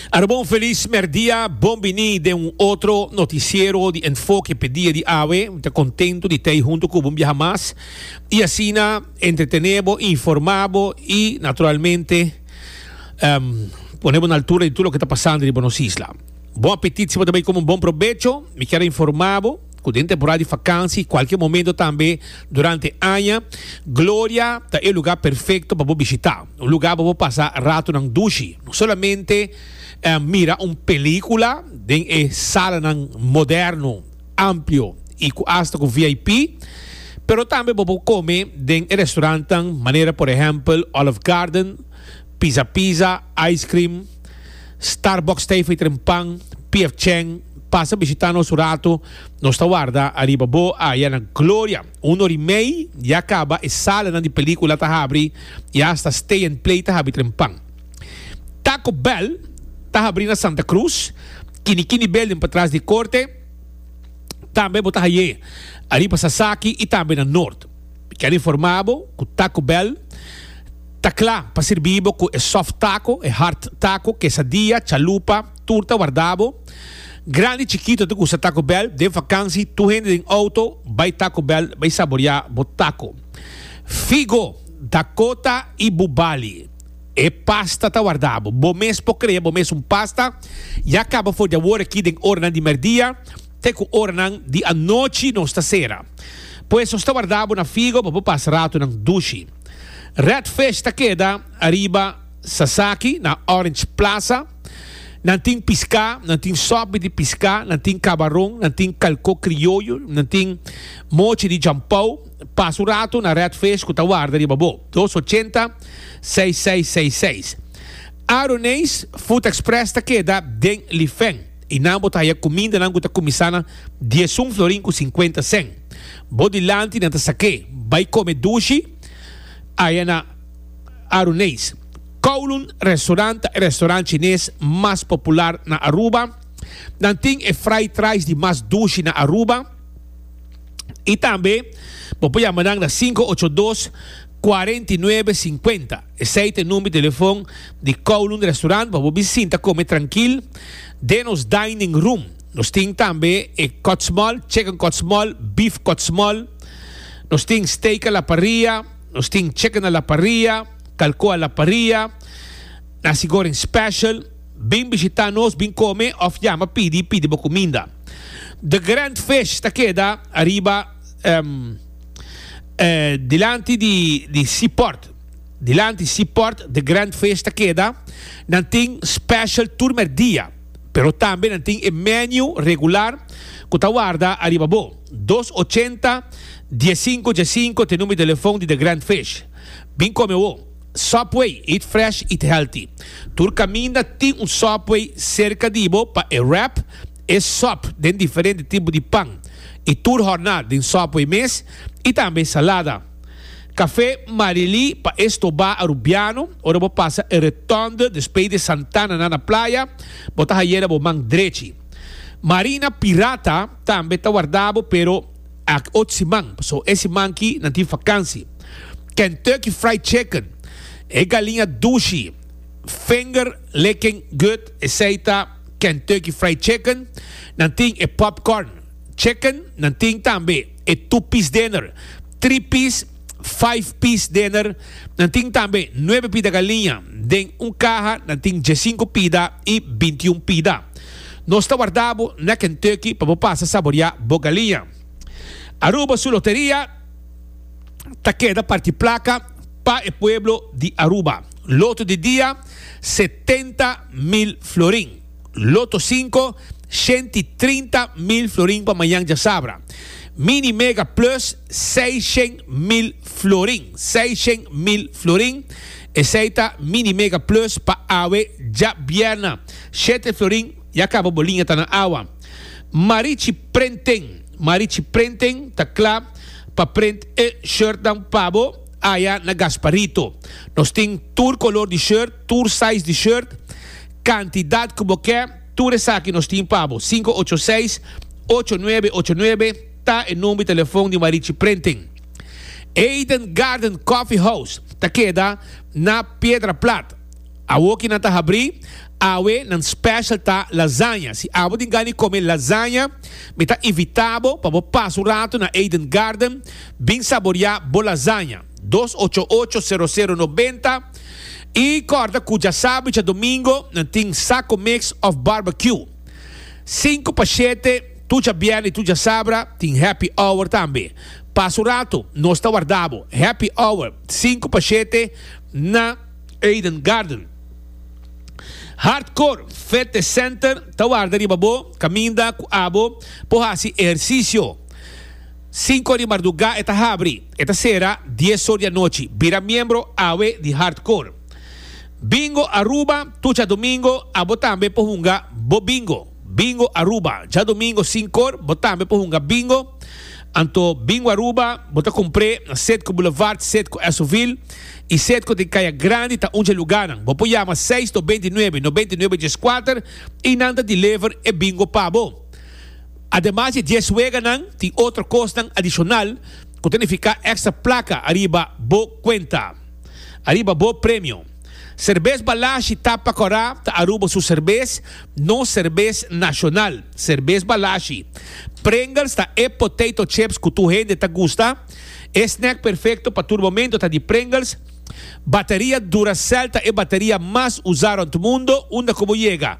Arobo un felis merdia, bon bini den un otro noticiero di Enfoke p'e dia di awe. Mi ta contento di t'ey hunto cu bo un biaha mas y asina entretene bo, informa bo y naturalmente pone bo na altura di tur loke ta pasando riba nos isla. Bon apetit si bo ta bay come un bon probecho. Mi kier a informa bo. Cu den temporada di fakansi y cualkier momento tambe durante aña, Gloria ta e lugar perfecto pa bo bishita. Un lugar pa bo pasa ratonan dushi, no solamente mira un pelicula den e salanan moderno, amplio y cu asta cu VIP, pero tambe bo por come den e restaurantnan manera por ehempel Olive Garden, Pizza Pizza, Ice Cream, Starbucks ta ei for e tren pan, PF Chang, pasa bishita nos un ratu, nos ta warda ariba bo aya na Gloria, un ori mei ya kaba e salanan di pelikula ta habri y hasta Stay and Play ta habi tren pan. Taco Bell ta habri na Santa Cruz, Kini Kini Building patras di e korte, tambe bo ta haye ariba Sasaki y tambe na Noord. Mi kier informa bo ku Taco Bell. Ta cla pa sirbi bo cu e soft taco, e hard taco, quesadilla, chalupa, turta warda bo. Grandi chikito ta gusta Taco Bell. Den vakansi tur hende den auto bay Taco Bell bay saboria bo taco. Figo, Dakota y Bubali. E pasta ta warda bo. Bo mes por crea bo mes un pasta. Ya caba for di awor aki den oranan di merdia. Te ku oranan di anochi nos ta sera. Pues nos ta warda bo na Figo pa bo pasa ratonan dushi. Redfish ta keda ariba Sasaki na Orange Plaza. Nan tin piská, nan tin sòpbe di piská, nan tin kabaron, nan tin kalkó krioyo, nan tin mochi di jampou. Pasa un rato na Redfish ku ta warda riba bo. Dos ochenta, seis seis seis seis. Aroneis Food Express ta keda den Lifen. I nan bo ta haya kumindanan ku ta kuminsá na diesun florin ku sinkuenta sèn. Bo dilanti nan ta sak'é, bai kome dushi aya na Aruneis, Kowloon Restaurant ta e restaurant chines mas popular na Aruba. Nan tin e fried rice di mas dushi na Aruba. I tambe bo por yama nan na sinku ocho dos, kuarenta i nuebe, sinkuenta. Esei ta e number di telefon di Kowloon Restaurant pa bo bisin ta kome trankil den nos dining room. Nos tin tambe e kòtsmòl, chicken kòtsmòl, beef kòtsmòl. Nos tin steak a la parrilla, nos tin chicken a la parrilla, kalko a la parrilla, nasi goreng special. Bin bishita nos, bin kome òf yama pidi, pidi bo kuminda. The Grand Fish ta keda ariba dilanti di di seaport. Dilanti si port de grand feest ta keda, nan tin special tur merdia, pero tambe nan tin e menu regular cu ta warda ariba bo, dos ochenta, diescinco diescinco t'e number telefon di de grand feest. Bin come awo! Subway, eat fresh, eat healthy. Tur caminda tin un Subway cerca di bo pa e wrap e sub den diferente tipo di pan y tur horna den Subway mes y tambe salada. Café Marily pa e stobá Arubiano, ora bo pasa e Rotonde despey de Santana na na playa, bo ta hayera bo man drechi. Marina Pirata tambe ta wardá bo pero aki ot siman, paso e siman ki nan tin fakansi. Kentucky Fried Chicken, e galiña dushi, Vinger Licking Good, esey ta Kentucky Fried Chicken. Nan tin e Popcorn Chicken, nan tin tambe. e tu pis dener, tri pis, five piece dener. Nan tin tambe nuebe pida galiña. Den un kaha nan tin diesinco pida i bintiun pida. Nos ta warda bo na Kentucky pa bo pasa saboriá bo galiña. Aruba su loteria ta keda parti placa pa e pueblo di Aruba. Loto di dia, setenta mil florin. Loto sinku, shent i trinta mil florin pa mañan djasabra. Mini Mega Plus, seishent mil florin. Seishent mil florin. Esei ta Mini Mega Plus pa awe djabièrnè. Shete florin ya kaba bo liña ta na awa. Marichi Printing, Marichi Printing ta kla pa print e shirtnan pa bo aya na Gasparito. Nos tin tur kolor di shirt, tur size di shirt. Cantidad cu bo ke, tur esaki nos tin pa bo. Sinku ocho seis, ocho nuebe ocho nuebe ta e number telefon di Marichi Printing. Eden Garden Coffee House ta keda na Piedra Plat. Awo ki nan ta habri, awe nan special ta lasaña. Si abo tin gana di come lasaña, mi ta invita bo pa bo pasa un rato na Eden Garden, bin saboria bo lasaña. dos ocho ocho sero sero noventa y corda cu dja sabro y dja domingo nan tin Saco Mix of Barbecue sinku pa shete tur dja bierne y tur dja sabra tin Happy Hour tambe pasa un rato nos ta wardabo Happy Hour sinku pa shete na Eden Garden Hardcore Fitness Center ta warda riba bo caminda cu abo por haci ehercicio. Sinku di mardugá e ta habri, e ta sera dies or di anochi. Bira miembro awe di Hardcore Bingo Aruba tur djadumingo, abo tambe por hunga bo bingo. Bingo Aruba, djadumingo sinku or bo tambe por hunga bingo. Anto Bingo Aruba bo ta kumpr'é na Setco Boulevard, Setco Esovil i Setco den Kaya Grandi ta un dje lugánan. Bo por yama seis noventa i nuebe, noventa i nuebe dieskuater i nan ta deliver e bingo pa bo. Ademas di e dies weganan, tin otro kosnan adishonal ku ta nifiká èkstra plaka ariba bo kuenta, ariba bo premio. Serbes Balashi Tapa Kòrá ta Aruba su serbes, nos serbes nashonal, Serbes Balashi. Pringles ta e potato chips ku tur hende ta gusta. E snèk perfekto pa tur momentu ta di Pringles. Bateria Duracell ta e bateria mas usá rònt mundo, unda ku bo yega.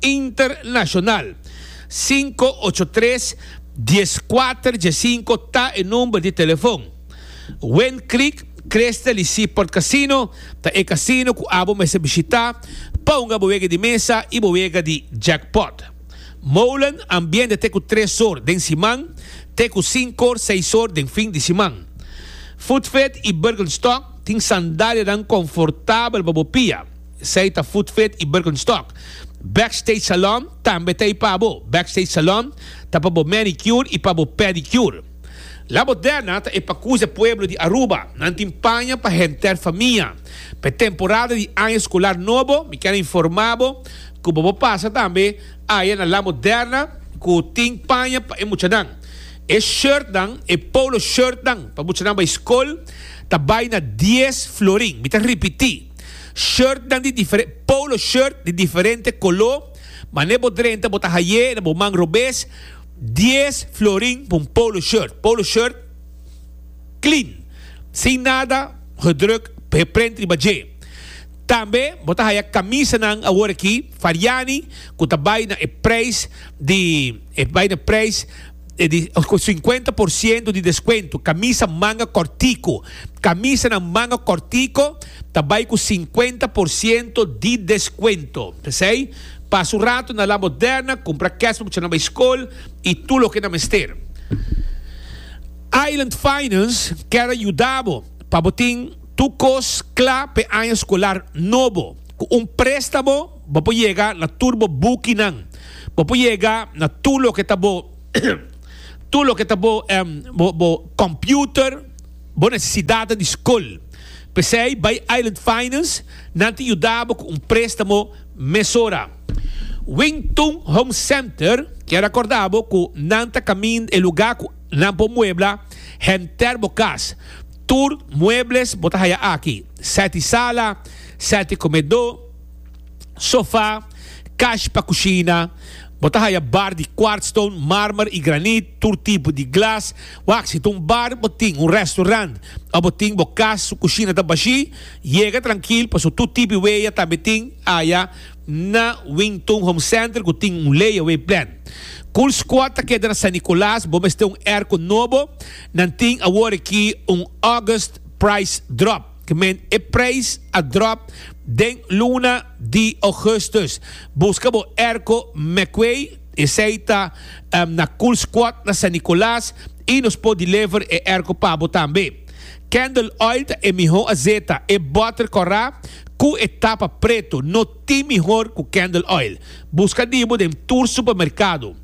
Internacional. Sinku ocho tres, dies kuater, dies sinku ta e number di telefon. Wind Creek Crystal y Seaport Casino ta e casino cu abo mester bishita pa hunga bo wega di mesa y bo wega di jackpot. Molen ambiente te cu tres or den siman te cu sinkor, seis or den fin di siman. Footfed y Birkenstock tin sandalianan confortabel pa bo pia. Esei ta Food Fit i Birkenstock. Backstage Salon tambe ta ei pa bo. Backstage Salon ta pa bo manicure i pa bo pedicure. La Moderna ta e pacuze pueblo di Aruba. Nan tin paña pa henter famia. P'e temporada di aña scolar nobo mi ken a informa bo cu bo por pasa tambe aya na La Moderna cu tin paña pa e muchanan. E shirtnan, e polo shirtnan pa muchanan bay scol ta bay na dies florin. Mi ta ripiti. Shirtnan di diferente, polo shirt di diferente koló, mane bo drenta bo ta hay'é na bo man robes, dies florin pa un polo shirt. Polo shirt clean, sin nada gedruk geprint riba dje. Tambe bo ta haya kamisanan awor aki, Fariani, ku ta bai na e prijs di, e bai na prijs. ku sinkuenta por siento di deskuento. Kamisa manga kòrtiku. Kamisanan manga kòrtiku ta bai ku sinkuenta por siento di deskuento. P'esei, pasa un ratu na La Moderna, kumpra kès pa bo chèranan bai skol i tur loke nan mester. Island Finance kèr a yuda bo pa bo tin tur kos kla p'e aña skolar nobo ku un préstamo. Bo por yega na tur bo bukinan. Bo por yega na tur loke ta bo tur loke ta bo bo computer, bo necesidadnan di scol. Pesey bay Island Finance, nan tin yuda bo cu un prestamo mesora. Wing Tun Home Center kier a corda bo cu nan ta camin e lugar cu nan por muebla henter bo cas. Tur muebles bo ta haya aki, sete sala, sete comedo. sofa, kashi pa kushina. Bo ta haya bar di kwartstone, marmer i granit, tur tipo di glas. Wak, si ta un bar, bo tin un restaurant òf bo tin bo kas su kushina ta bashí? Yega trankil paso tur tipi weya tambe tin aya na Wington Home Center ku tin un layaway plan. Cool Squad ta keda na San Nicolas, bo mester un airco nobo? Nan tin awor aki un August price drop. Kmen e prijs a drop den luna di Augustus. Buska bo erko Meckway, esei ta na Cool Squad na San Nicolas y nos por deliver e erko pa bo tambe. Candle Oil ta e miho azeta, e butter corra cu e tapa preto, no. Tin mihor cu Candle Oil. Busca di bo den tur supermercado.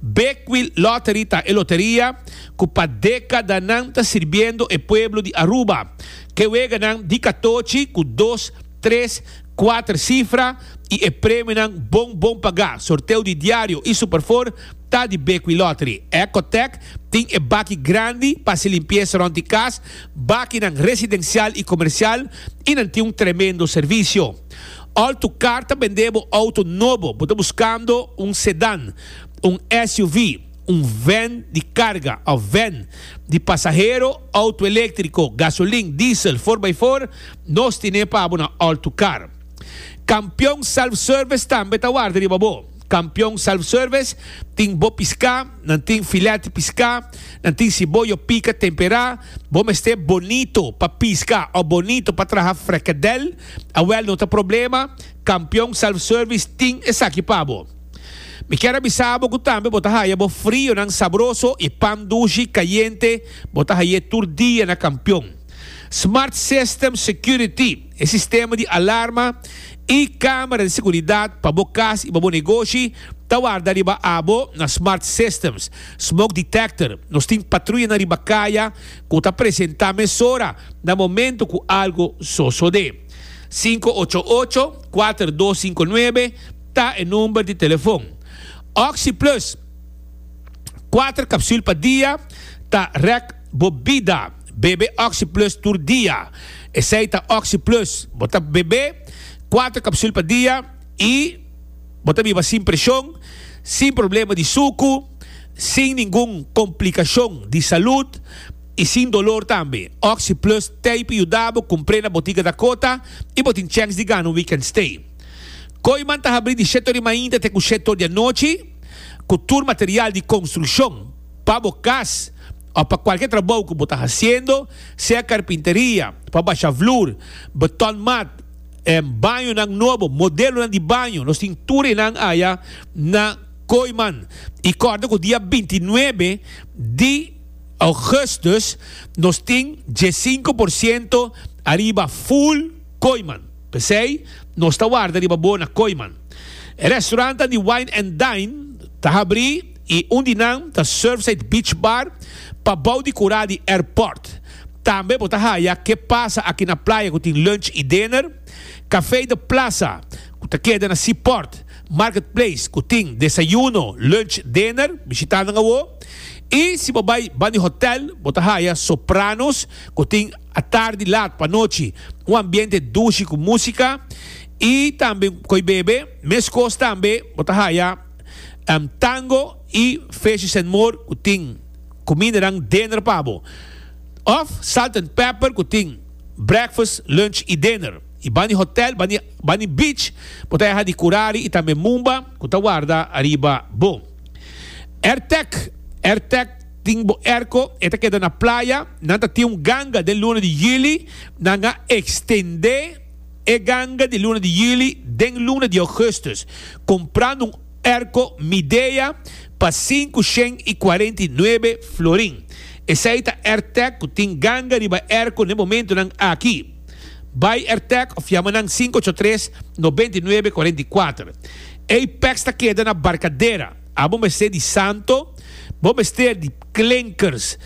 Beckwil Lottery ta e loteria cu pa decadanan ta sirbiendo e pueblo di Aruba. Ke weganan di catochi cu dos, tres, cuater cifra y e premionan bon bon paga. Sorteo di diario y superfor ta di Beckwil Lottery. Ecotec tin e baki grandi pa haci limpieza rond di cas, bakinan residencial y comercial y nan tin un tremendo servicio. Òl tu karta bendé bo outo nobo, bo ta buskando un sedàn, un SUV, un vèn di karga òf vèn di pasahero, outo eléktriko, gasolin, diesel, for-by-for, nos tine pa bo na Òl tu Kar. Kampion Self Service tambe ta warda riba bo. Kampion Self Service tin bo piská, nan tin filèt di piská, nan tin siboyo pika temperá, bo mester bonito pa piska òf bonito pa traha frekedèl, Awel no ta problema, Kampion Self Service tin esaki pa bo. Mi kier a bisa bo ku tambe bo ta haya bo frionan sabroso i pan dushi kayente bo ta hay'é tur dia na Kampion. Smart System Security, e sistema di alarma i kamera di seguridat pa bo kas i pa bo negoshi ta warda riba abo na Smart Systems. Smoke Detector, nos tin patruyanan riba kaya Ku ta presentá mesora na momentu ku algu sosodé. Sinku ocho ocho, kuater dos sinku nuebe ta e number di telefon. Oxi Plus, Kuater kapsul pa dia ta rèk bo bida. Bebe Oxi Plus tur dia. Esei ta Oxi Plus. Bo ta bebe kuater kapsul pa dia i bo ta biba sin preshon, sin problema di suku. sin ningun komplikashon di salud i sin dolor tambe. Oxyplus Tape yuda bo kumpr'é na botiga Dakota i bo tin chèns di gana un weekend stay. Koiman ta habrí di shèt ori mainta te ku shèt ori di anochi ku tur material di konstrukshon pa bo kas òf pa kualke trabou ku bo ta hasiendo, sea karpinteria, pa basha vloer, beton mat, bañonan nobo, modelonan di baño. Nos tin tur enan aya na. Kooijman i kòrda ku dia binti nuebe di ougùstùs nos tin diesinko por siento ariba Full Kooijman. P'esei nos ta warda riba bo na Kooijman. E restaurantan di Wine and Dine ta habrí i un di nan ta Surfside Beach Bar pa bou di kurá di airport. Tambe bo ta haya Ke Pasa Aki Na Playa ku tin lunch i dinner, Café de Plaza ku ta keda na Seaport, Marketplace ku tin desayuno, lunch, dinner, bishitá nan awo. I si bo bai ban di hotel, bo ta haya Sopranos ku tin atardi lat pa anochi, un ambiente dushi ku músika i tambe koi bebe. Meskos tambe bo ta haya Tango i Fishes and More ku tin kumindanan dinner pa bo, òf Salt and Pepper ku tin breakfast, lunch i dinner. y bani hotel, bani bani beach bo ta yaha di curari y tambe mumba cu ta warda ariba bo. Airtec, Airtec tin bo airco e ta keda na playa, nan ta tin un ganga den luna di juli, nan a extende e ganga di luna di juli den luna di augustus comprando un airco Midea pa sinku shen y cuarenta y nuebe florin. Esey ta Airtec cu tin ganga riba airco n'e momentonan aki. Bai Ertec of yama nan sinku ocho tres, nobenta i nuebe, kuarenta i kuater. Ei pèks ta keda na Barkadera. Abo mester di santo, bo mester di klinkers,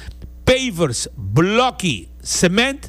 pavers, blòki, sement.